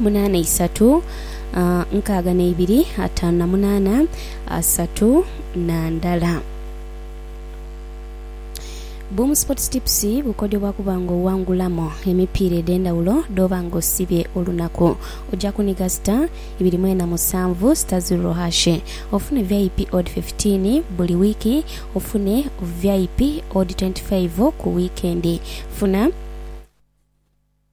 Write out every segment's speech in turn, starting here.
munaana isatu nkaaga na ibiri ataanu na munaana asatu na ndala. Boom Sports Tips bukodhobwa kuba nga owangulamu emipiira edhendhawulo dhooba nga osibye olunaku. Oja kuniga star ibiri mwena musanvu star zirro hash ofune vip odd fifteen buli wiiki ofune vip odd twenty five ku wiikendi. Funa.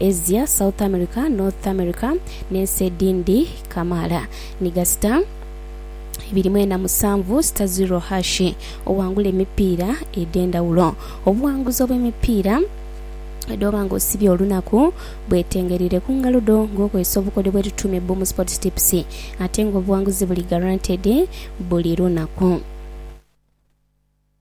Asia, South America, North America, n'ensi edhindi kamaala. Ni gasita ibiri mwena musanvu, Stazzurro Hashi owangula emipiira edh'endhawulo. Obuwanguzi obw'emipiira edh'oba nga osibye olunaku bwetengeraire ku ngalo dho ng'okozesa obukodyo bwe tutuuma ebbomu sports tips ate ng'obuwanguzi buli guaranteed buli lunaku.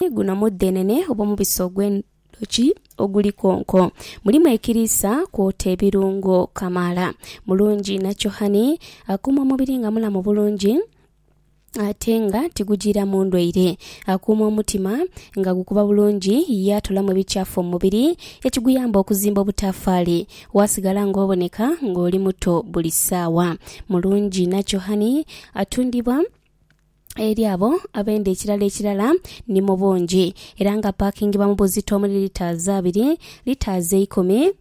Ni guno mudhenene obw'omubisi ogw'endhoki oguli konko. Mulimu ekiriisa kwota ebirungo kamaala. Mulungi nakyo hani, akuuma omubiri nga mulamu bulungi ate nga tigujiiramu ndwaire. Akuuma omutima nga gukuba bulungi ye atoolamu ebikyafu mu mubiri ekiguyamba okuzimba obutaafaali waasigala ng'oboneka ng'oli muto buli saawa. Mulungi nakyo hani, atundibwa. eri abo abenda ekirala ekirala ni mu bungi era nga paakingibwa mu buzito omuli litres abiri, litres eikumi,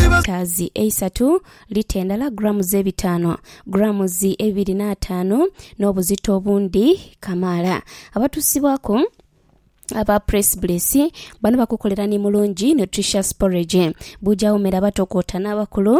litres eisatu, lita endala, grams ebitaanu, grams ebibiri n'ataanu n'obuzito obundi kamaala. Abatusibwaku aba Press Bliss bano bakukolera ni Mulungi Nutritious Porridge, bujawo mere abatokoota n'abakulu.